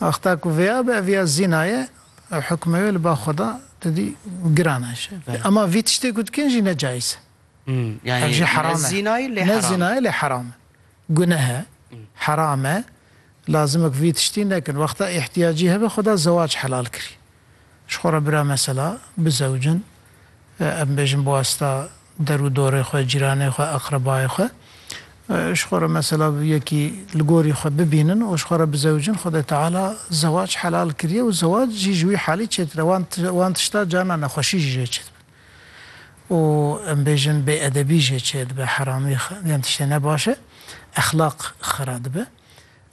Wexta ku vêya be ev ya zîna ye ew hukmê wê li ba xwe da tu dî giran e ji ema vî tiştê ku dikin jî ne caiz e. Ev jî heram e. Ne zîna ye lê heram e. Guneh e. Heram e. Lazim e ku vî tiştî nekin. Wexta îhtiyacî hebe xwe da zewac helal kirî. Ji xwe re bira mesela bizewicin, em bêjin bi wasta der û dorê xwe, cîranê xwe, eqrebayê xwe. Ji xwe re mesela yekî li gorî xwe bibînin û ji xwe re bizewicin, Xwedê Teala zewac helal kiriye û zewac jî ji wî halî çêtir e, wan wan tişta carna nexweşî jî jê çê dibe û em bêjin bêedebî jê çê dibe, heramî, yan tiştê ne baş e, exlaq xera dibe.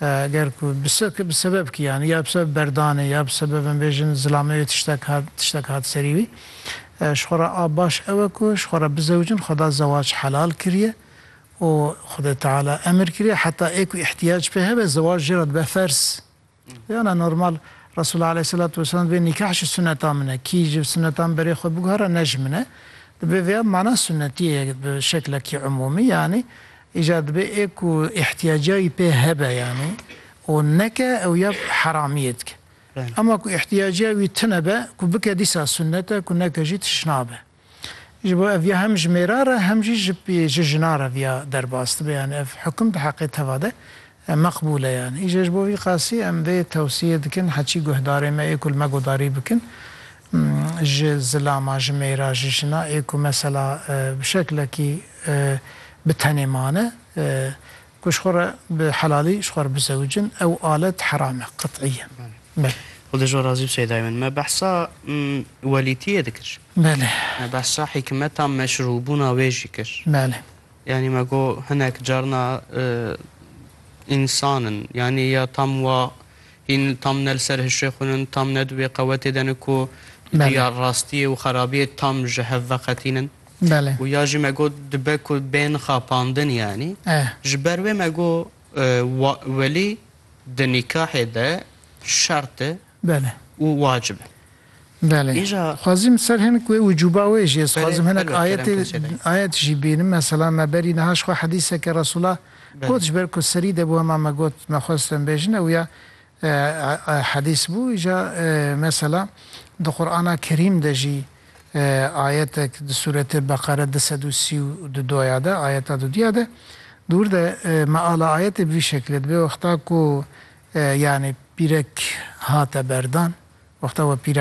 Eger ku bi sebeb kî yanî ya bi sebeb berdanê ya bi sebeb em bêjin zilameyê tiştek hat tiştek hat serî wî ji xwe re a baş ew e ku ji xwe re bizewicin Xweda zewac helal kiriye û Xwedê Teala emir kiriye heta ê ku îhtiyac pê hebe zewac jê re dibe ferz Yana normal Resûl aleyhîselatu weselam dibê nîkah ji suneta min e kî ji sunetan berê xwe biguhere ne ji min e dibê vêya mana sunetiyê bi şeklekî umûmî yanî Îcar dibe ê ku îhtiyaca wî pê hebe yanî û neke ew ya heramiyê dike. Ema ku îhtiyaca wî tune be ku bike dîsa sunnet e ku neke jî tişt nabe. Ji bo ev ya hem ji mêra re hem jî ji jinan re viya derbas dibe yanî ev hukum di heqê teva de Em meqbûle yani. Îşe ji bo vî qasî em vê tewsîyê dikin heçî guhdarê me ê ku li me guhdarî bikin ji zilama, ji mêra, ji jina ê ku mesela bi şeklekî bi tenê mane ku ji xwe re bi helalî ji xwe re bizewicin ew alet heram e qet'îyen. Belê. Xwedê ji we razî be Seyedayê min. Me behsa welîtîyê dikir. Belê. Me behsa hîkmeta meşrûbûna wê jî kir. Belê. Yanî me got hinek carna însan in. Yanî ya tam wa hîn tam ne li ser hişê xwe in, tam ne di wê qewetê de in ku riya rastiyê û xerabiyê tam ji hev veqetînin. Û ya jî me got dibe ku bên xapandin yanî. Ji ber wê me got welî di nîkahê de şert e. Bele. Û wacib e. Bele. Îja. Dixwazîm ser hinek wê wicûba wê jî ez dixwazim hinek Belê, belê, ayetê kerem kimsê dayê. ayet jî bînim. Mesela me berî niha ji xwe hedîseke Resûla Belê. got ji ber ku serî de bû hema me got me xwest em bêjin ew ya e, e, e, hedîs bû. Îja e, mesela di Qur'ana Kerîm de jî ayetek di sûretê Beqere du sed û sî û du do ya de, ayeta du dû ya de, di wir de meala ayetê bi vî şeklê dibe, wexta ku yanî pîrek hate berdan, wexta we